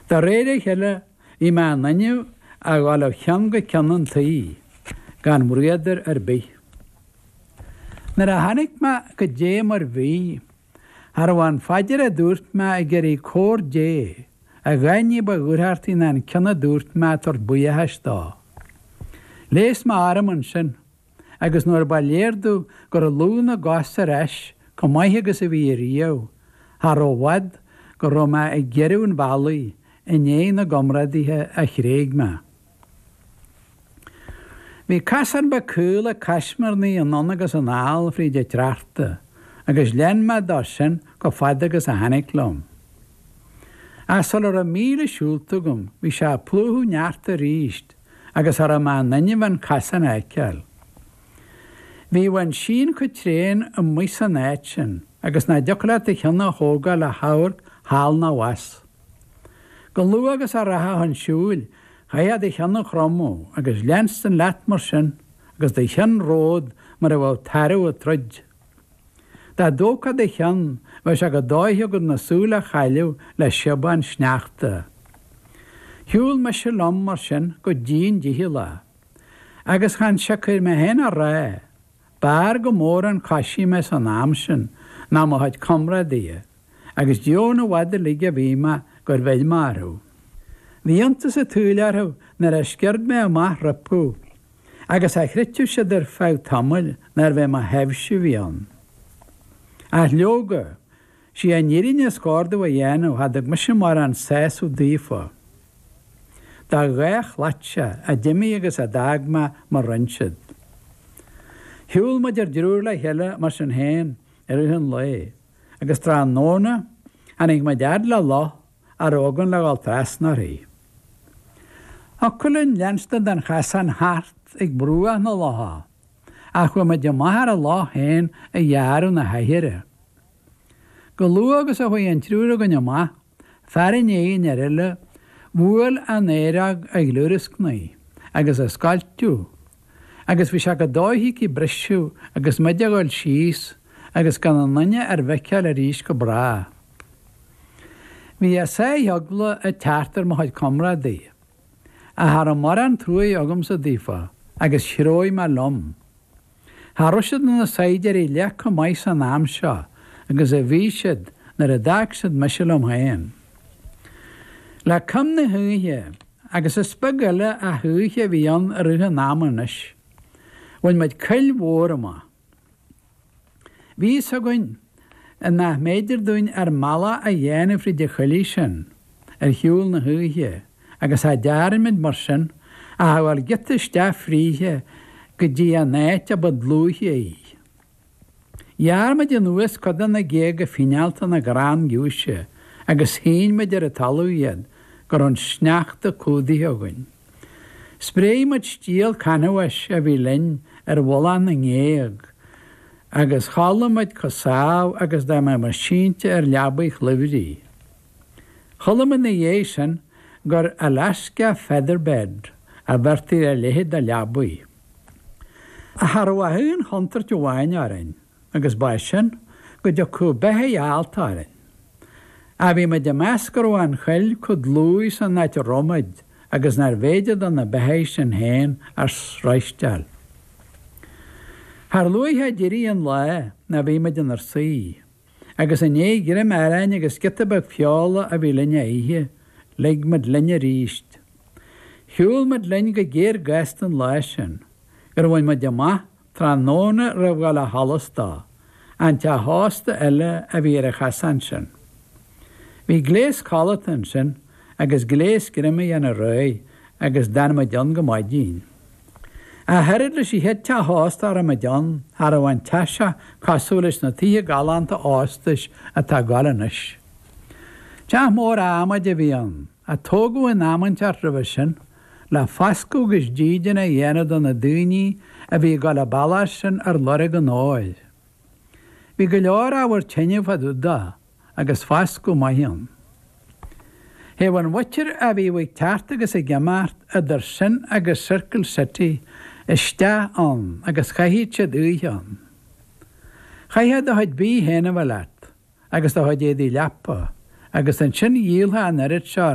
De réir a chéile, bhí mé in inmhe a ghabháil ó cheann go ceann an tí, gan mbriathar ar bith. Nuair a tháinig mé go dtí mar bhí, cha raibh aon phaidir a dúirt mé ag iarraidh cabhair Dé, a dhath ní ba dúthrachtaí ná an ceann a dúirt mé ag tabhairt buíochais dó. Ghléas mé orm ansin agus nuair ba léir domh go raibh lúth na gcos ar ais chomh maith agus a bhí riamh, cha raibh i bhfad go raibh mé ag gearradh an bhealaigh i ndiaidh na gcomrádaithe a thréig mé. Bhí casán beag caol ag caismirnigh anonn agus anall fríd an tsneachta, agus lean mé dó sin chomh fada agus a tháinig liom. Ach sula raibh míle siúlta agam, bhí sé ag plúchadh sneachta arís, agus cha raibh mé in inmhe an casán a fheiceáil. Bhí an síon chomh tréan amuigh san áit sin agus nach dtiocfadh leat do cheann a thógáil le hamharc thall ná abhus. Chomh luath agus a rachfá chun siúil, chaithfeá do cheann a chromadh agus leanstan leat mar sin agus do cheann romhat mar a bheadh tarbh ag troid. Dá dtógfá do cheann, bheadh sé chomh dóiche agat na súile a chailleadh le síobán sneachta. Shiúl mise liom mar sin go dian dícheallach. Agus chan siocair mé féin á rá, b'fhearr go mór an coisí mé san am sin ná mo chuid comrádaithe. agus deamhan i bhfad uilig a bhí mé gur bheir mé orthu. Bhí iontas an tsaoil orthu nuair a sciurd mé amach rompu, agus cha chreidfeadh siad ar feadh tamaill nárbh é mo thaibhse a bhí ann. Ach leoga, sí an fhírinne is cóir domh a dhéanamh, cha dtug mise mórán sásamh daofa. Dá dhá chladhaire a d'imigh agus a d'fhág mé mar rinne siad. Shiúl muid ár dtriúr le chéile mar sin féin i rith an lae. agus tráthnóna tháinig muid fhad le loch a raibh againn le dhul trasna uirthi. Thiocfadh linn leanstan den chasán thart ag bruach na locha, ach chuaigh muid amach ar an loch féin a ghearradh na haichearra. Chomh luath agus a chuaigh an triúr againn amach, Fear i ndiaidh an fhir eile, bhuail an oighreog ag gliúrascnaigh agus ag scoilteadh, agus bhí sé chomh dóiche aici briseadh agus muid a dhul síos agus gan aon duine ár bhfeiceáil arís go bráth. Bhí a sáith eagla ag teacht ar mo chuid comrádaí. Ach cha raibh mórán truaighe agamsa daofa agus threabh mé liom. Cha raibh siad ina saighdiúirí leath chomh maith san am seo agus a bhí siad nuair a d'fhág siad mise liom féin. Le coim na hoíche, agus is beag eile ach oíche a bhí ann i rith an ama anois, bhain muid coill mhór amach. Bhí fhios againn nach mb'fhéidir dúinn ár mbealach a dhéanamh fríd an choillidh sin ar shiúl na hoíche agus cha dtearn muid mar sin ach a ghabháil giota isteach fríthe go dtí an áit a ba dlúithe í. Ghearr muid anuas cuid de na géaga fineálta na gcrann giúise agus shín muid ar an talamh iad go raibh an sneachta cumhdaithe againn. Spréigh muid stiall canbháis a bhí linn ar mhullach na ngéag agus chodlaigh muid comh sámh agus dá mbeadh muid sínte ar leabaigh chluimhrigh. Chuala muid ina dhiaidh sin gur Alaska Featherbed a bheirtí ar a leithéid de leabaigh. Ach cha raibh ach aon chontúirt amháin orainn, agus ba é sin, go dtiocfadh beithidhigh allta orainn. Ach bhí muid ag meas go raibh an choill comh dlúith san áit a raibh muid agus nárbh fhéidir do na beithidhigh sin féin a sroisteáil. Char luaithe a d'éirigh an lá ná bhí muid inár suí, agus i ndéidh greim aráin agus giota beag feola a bhí linn a ithe, lig muid linn arís. Shiúl muid linn go géar gasta an lá sin, gur bhain muid amach Tráthnóna roimh dhul ó sholas dó, an teach ósta eile a bhí ar an chasán sin. Bhí gléas codlata ansin agus gléas greim a dhéanamh réidh agus d'fhan muid ann go maidin. Ach oiread leis an chéad teach ósta a raibh muid ann, cha raibh an teach seo cosúil leis na tithe galánta óstais atá ag goil anois. Teach mór adhmaid a bhí ann. a tógadh in am inteacht roimhe sin, le foscadh is dídean a dhéanamh do na daoine a bhí ag dul an bealach sin ar lorg an óir. Bhí go leor ábhar tine fá dtaobh dó agus foscadh maith ann. Théadh an mhuintir a bhíodh ag teacht agus ag imeacht idir sin agus Circle City isteach ann agus chaitheadh siad oíche ann. Chaithfeá do chuid bídh féin a bheith leat agus do chuid éadaí leapa agus ansin dhíolfá an oiread seo